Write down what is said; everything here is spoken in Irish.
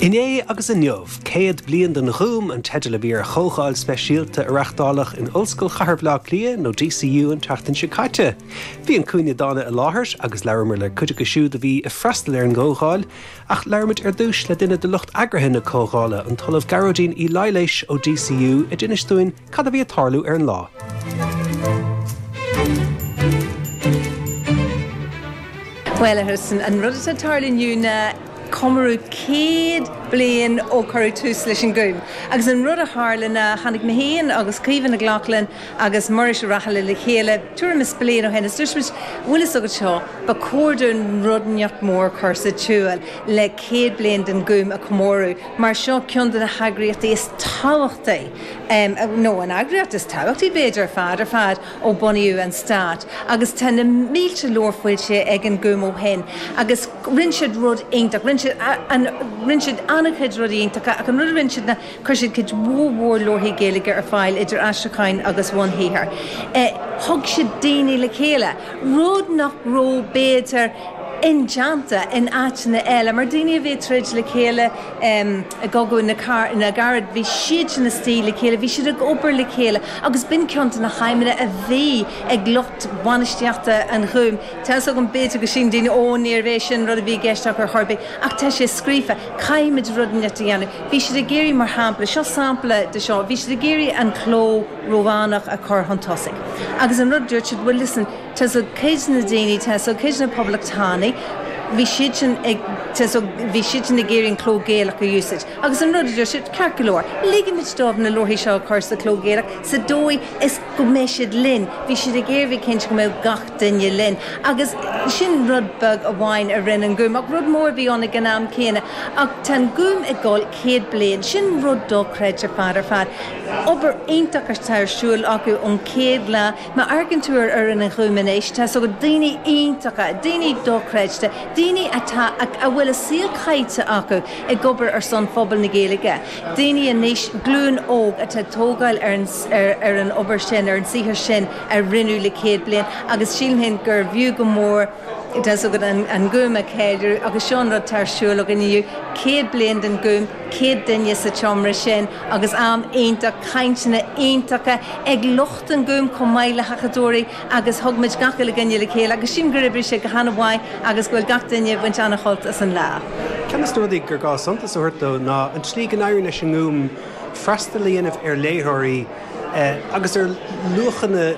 Inné agus Inniu, 100 Bliain den Ghúm an teideal a bhí ar chomhdháil speisialta a reachtáladh in Ollscoil Chathair Bhaile Átha Cliath nó DCU an tseachtain seo caite. Bhí An Cúinne Dána i láthair agus labhramar le cuid acu siúd a bhí ag freastal ar an gcomhdháil ach labhraímid ar dtús le duine de lucht eagraithe na comhdhála, an tOllamh Gearóidín Uí Laighléis ó DCU a d'inis dúinn Cad a bhí ag tarlú ar an lá? Bhuel, a Tristan, an rud atá ag tarlú inniu ná comóradh céad bliain ó cuireadh tús leis an nGúm. Agus an rud a tharla ná tháinig mé féin agus Caoimhe Nic Lochlainn agus Muiris Ó Raghallaigh le chéile tuairim is bliain ó shin is dúirt muid, bhfuil fhios agat seo, ba chóir dúinn rud inteacht mór a chur sa tsiúl le céad bliain den Ghúm a chomóradh mar seo ceann de na heagraíochtaí is tábhachtaí nó an eagraíocht is tábhachtaí, b'fhéidir, ar fad ar fad ó bunaíodh an stát, agus tá na mílte leabhar foilsithe ag an nGúm ó shin, agus rinne siad rud iontach, rinne siad an, rinne siad an-chuid rudaí iontacha, ach an rud a rinne siad ná, chuir siad cuid mhór mhór leabharthaí Gaeilge ar fáil, idir aistriúcháin agus bhunshaothair. Thug siad daoine le chéile, rud nach raibh, b'fhéidir, indéanta in áiteanna eile, mar daoine a bhí ag troid le chéile, I gCogadh na gCarad le gairid bhí siadsan istigh le chéile, bhí siad ag obair le chéile agus b'in ceann de na haidhmeanna a bhí ag lucht bainistíochta an Ghúim. Tá a fhios agam b'fhéidir go síleann daoine 'Ó, níorbh é sin an rud a bhí i gceist acu ar chor ar bith' ach tá sé scríofa, caithfimid rud inteacht a dhéanamh. Bhí siad ag iarraidh, mar shampla, seo sampla de seo, bhí siad ag iarraidh an cló Rómhánach a chur chun tosaigh agus an rud a dúirt siad 'bhuel listen, tá a fhios agat cuid de na daoine, tá a fhios agat cuid de na poblachtánaigh, bhí siadsan ag, tá a fhios agat bhí siadsan ag iarraidh an cló Gaelach a úsáid. Agus an rud a deir siad, ceart go leor, ligimid dóibh na leabharthaí seo a chur sa chló Gaelach sa dóigh is go mbeidh siad linn, bhí siad ag iarraidh bheith cinnte go mbeadh gach duine linn. Agus sin rud beag amháin a rinne an Gúm. Ach rud mór a bhí ann ag an am céanna. Ach tá an Gúm ag dul céad bliain. Sin rud dochreidte ar fad ar fad. Obair iontach atá ar siúl acu ón chéad lá. Má amharcann tú ar fhoireann an Ghúim anois, tá a fhios agat daoine iontacha, daoine dochreidte, daoine atá, a bhfuil a saol caite acu ag obair ar son phobal na Gaeilge, daoine anois, glúin óg, atá ag tógáil ar an, ar, ar an obair sin, ar an saothar sin a rinneadh le céad bliain agus sílim féin gurbh fhiú go mór, tá a fhios agat, an, an Gúm a cheiliúradh agus seo an rud atá ar siúl againn inniu, céad bliain den Gúm, céad duine sa tseomra sin agus am iontach, cainteanna iontacha ag lucht. an Ghúim chomh maith le hacadóirí agus thug muid gach uile dhuine le chéile agus sílim gur oibrigh sé go han-mhaith agus go bhfuil gach duine ag baint an-shult as an lá. Ceann de na rudaí gur gá suntas a thabhairt dó ná an tslí go n-éiríonn leis an nGúm freastal a dhéanamh ar léitheoirí agus ar luachanna